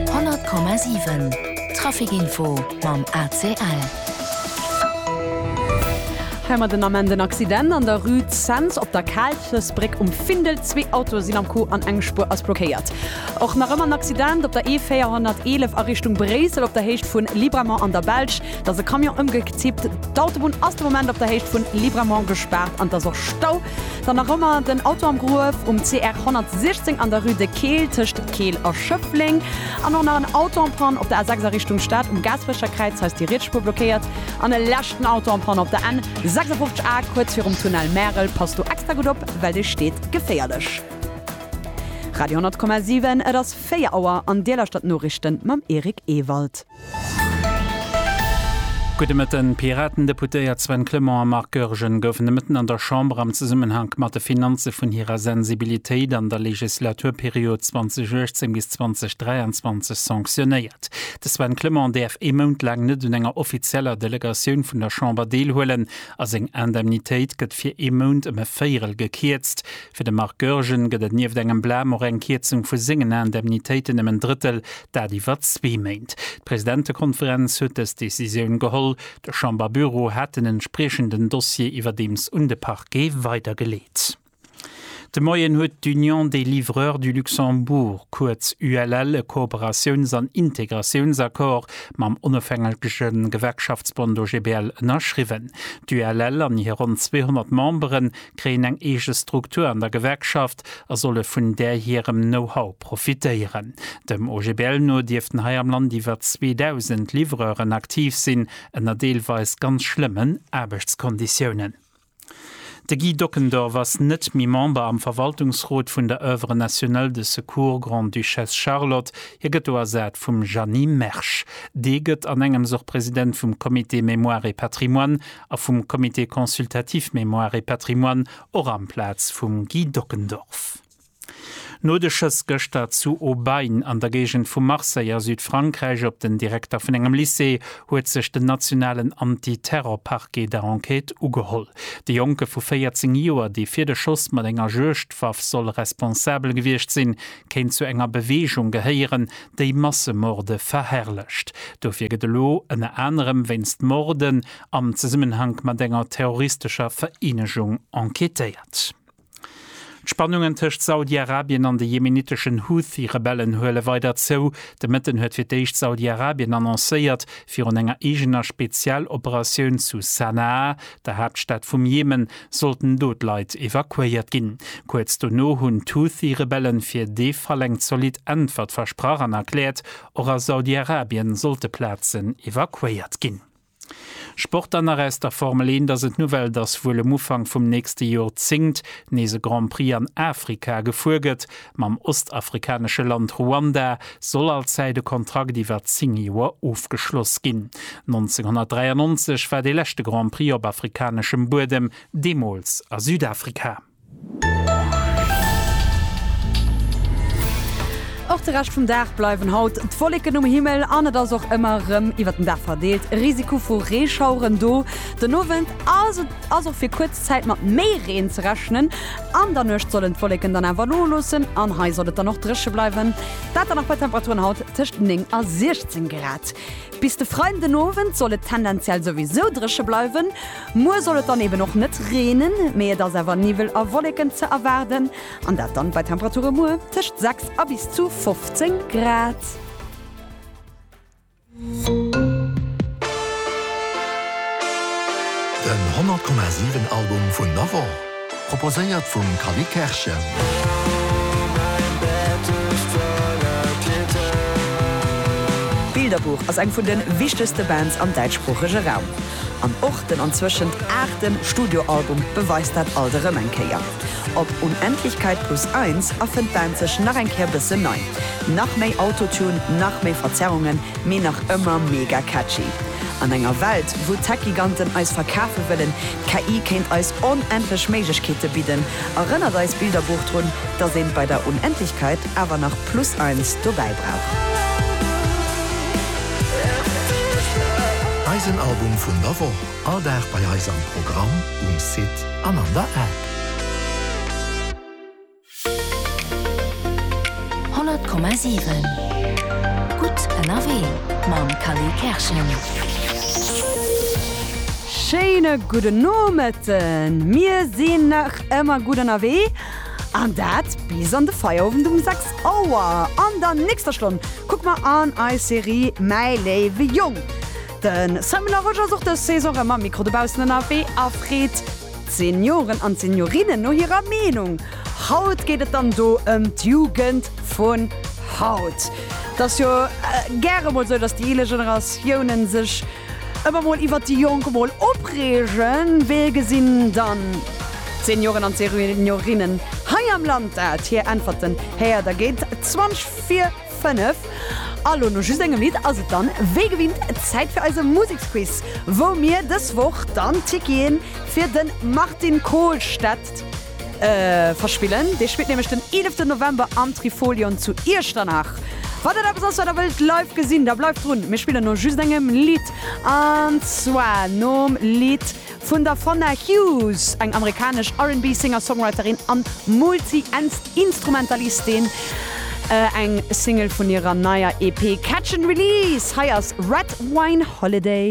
100,7 Trafic Info mam ACL. Heimat den Ament en Accident an der Rue Cents op der Kaalchesbréck um Findel. Zwee Autoe sinn am Coup an eng Spuer ass blockéiert. Och nach ëmmer en Accident op der E411 a Richtung Bréissel op der Héicht vu Libramont an der Belsch. dass e Camion ëmgek zippt, d'Autobunn ass de Moment op der Héicht vun Libramont gespaart an et ass och Stau. Dann nach ëmmer den Auto am Gruef um CR 116 an der Rue de Keel tëscht Keel a Schëffleng an och nach en Auto en panne op der A 6 a Richtung Stad um Gaasperecher Kräiz, hei ass déi riets Spuer blockéiert an e leschten Auto en panne op der N 56 A kuerz virum Tunnel Märel. Passt do extra gutt op, well dee steet geféierlech. Radio 10,7, et ass 4 Auer an Dir lauschtert d'Noriichten mam Eric Ewald. Gudde Mëtten. D'Piraten-Deputéiert Sven Clement a Marc Goergen goufen de Mëtten an der Chamber am Zesummenhank mat de Finanze vun hirer Sensibilitéit an der Legislaturperiod 2018 bis 2023 sanctionéiert. De Sven Clement däerf ee Mount laang net un enger offizieller Delegatioun vun der Chamber deelhuelen a seng Indemnitéit gëtt fir ee Mount ëm e Véierel gekierzt. Fir de Marc Goergen gëtt et nieft engem Blam och eng Kierzung vu sengen Indemnitéiten ëm en Drëttel, dat iwwer zwee Méint. D'Presidentekonferenz huet dës Decisioun geholl. De Chamberbüro hat den entspriechenden Dossier iwwerdeems un de Parquet weidergeleet. De Moien huet d'Union des livreurs du Luxembourg, kuerz ULL, e Kooperatiouns an Integratiounsaccord mam onofhängege Gewerkschaftsbond OGBL ënnerschriwwen. D'ULL an hir ronn 200 Membere kréien eng eege Struktur an der Gewerkschaft. Markt a solle vun där hirem Know-how profitéieren. Dem OGBL no dierften hei am Land iwwer 2.000 Livreuren aktiv sinn, ënner deelweis ganz schlëmmen Aarbechtskonditiounen. De Guy Dockendorf ass net méi Member am Verwaltungsrot vun der Oeuvre nationale de secours Grande-Duchesse Charlotte, hie gëtt do ersat vum Jeanny Mersch. Dee gëtt anengems och President vum Comité Mémoire et Patrimoine a vum Comité consultatif Mémoire et Patrimoine, och amplaz vum Guy Dockendorf. No de Schëss gëschter zu Aubagne an der Géigend vu Marseille a Südfrankräich op den Direkter vun engem Lycée huet sech den nationalen Anti-Terror-Parquet der Enquête ugeholl. De Jonke vu 14 Joer, dee fir de Schoss mat enger Juegdwaff soll responsabel gewiescht sinn, kéint zu enger Beweegung gehéieren, déi Massemorde verherrlecht. Dofir gëtt elo ënner anerem wéinst Morden am Zesummenhank mat enger terroristescher Vereenegung enquêtéiert. D'Spannungen tëscht Saudi-Arabien an de jemeniteschen Houthi-Rebellen huele weider zou. De Mëtten huet fir d'éischt Saudi-Arabien annoncéiert, virun enger eegener Spezialoperatioun zu Sanaa, der Haaptstad vum Jemen, sollten do d'Leit evakuéiert ginn. Kuerz dono hunn d'Houthi-Rebelle fir dee Fall eng zolidd Äntwert versprach an erkläert, och a Saudi-Arabien sollte Plazen evakuéiert ginn. Sport dann nach aus der Formel 1 ass et d'Nouvelle, dass wuel um Ufank vum nächste Jorzéngt nees e Grand Prix an Afrika gefuer gëtt. Mam ostafrikanesche Land Ruanda soll allzäit e Kontrakt iwwer 10 Joer ofgeschloss ginn. 1993 war dee leschte Grand Prix op afrikaneschem Buedem, deemools a Südafrika. Och de Rescht vum Dag bleiwen haut d'Wolleken um Himmel an et ass och ëmmer erëm iwwert den Dag verdeelt e Risiko vu Reeschaueren do. Den Owend ass et ass och fir kuerz Zäit mat méi Reen ze rechnen. An der Nuecht sollen d'Wolleken dann awer noloossen an hei soll et dann och dréche bleiwen. Dat dann nach bei Temperaturen haut tëscht 9 a 16 Grad. Bis de Freiden den Owend soll et tendenziell souwisou dréche bleiwen. Muer soll et dann eben och net reenen, mee et ass awer Niwwel a Wolleken ze erwaarden, an dat dann bei Temperature muer tëscht 6 a bis zu 15 Grad. Den 100,7 Album vun der Woch. Proposéiert vum Callie Kerschen. Bilderbuch ass eng vun de wichtegste Bands am däitschsproochege Raum. An och den anzwëschent aachte Studioalbum beweist dat alt erëm eng Kéier. Op Unendlichkeit plus eins erfënnt d'Band sech nach eng Kéier bëssen nei. Nach méi Autotune, nach méi Verzerrungen, mee nach ëmmer mega catchy. An enger Welt, wou d'Tech-Giganten eis verkafe wëllen, D'KI kéint eis onendlech Méiglechkeete bidden, erënnert eist Bilderbuch drun, dass een bei der Unendlichkeit awer nach plus eins dobäi brauch. Eisen Album vun der Woch, all Dag bei eis am Programm, um Site an an der App. 100,7 Gutt ënnerwee mam Kally Kerschen. Schéine gudden Nomëtten! Mir sinn nach ëmmer gutt ënnerwee an dat bis an de Feierowend um 6 Auer. An der nächster Stonn kucke mer an eis Serie Mäi léiwe Jong. De Simon Larosche ass och dës Saison erëm am Mikro dobaussen ënnerwee a freet D'Senioren an d'Seniorinnen no hirer Meenung. Haut geet et dann do ëm d'Jugend vun haut. Et ass jo gäre mol sou, datt déi eeler Generatiounen sech ëmmer mol iwwert déi Jonk mol opreegen. Wéi gesinn dann d'Senioren an d'Seniorinnen hei am Land dat? Hir Äntwerten héiert der géint 20 vir. 5. A lo no just engem Lidd ass et dann wéi gewinnt Zäit fir eise Museksquiz, wou mir dës Woch dann Ticketen fir de Martin Kohlstedt verspillen. Dee spillt nämlech den 11 November am Trifolion zu Iechternach. Wann dat eppes ass wat der wëllt live gesinn, da bleift drun. Mir spillen no just engem Lidd an zwar nom Lidd. Vun der Fonna Hughes, eng amerikanesch RnB-Singer-Songwriterin an Multi-Instrumentalistin, eng Single vun hirer neier EP Catch and Release. Hei ass Red Wine Holiday.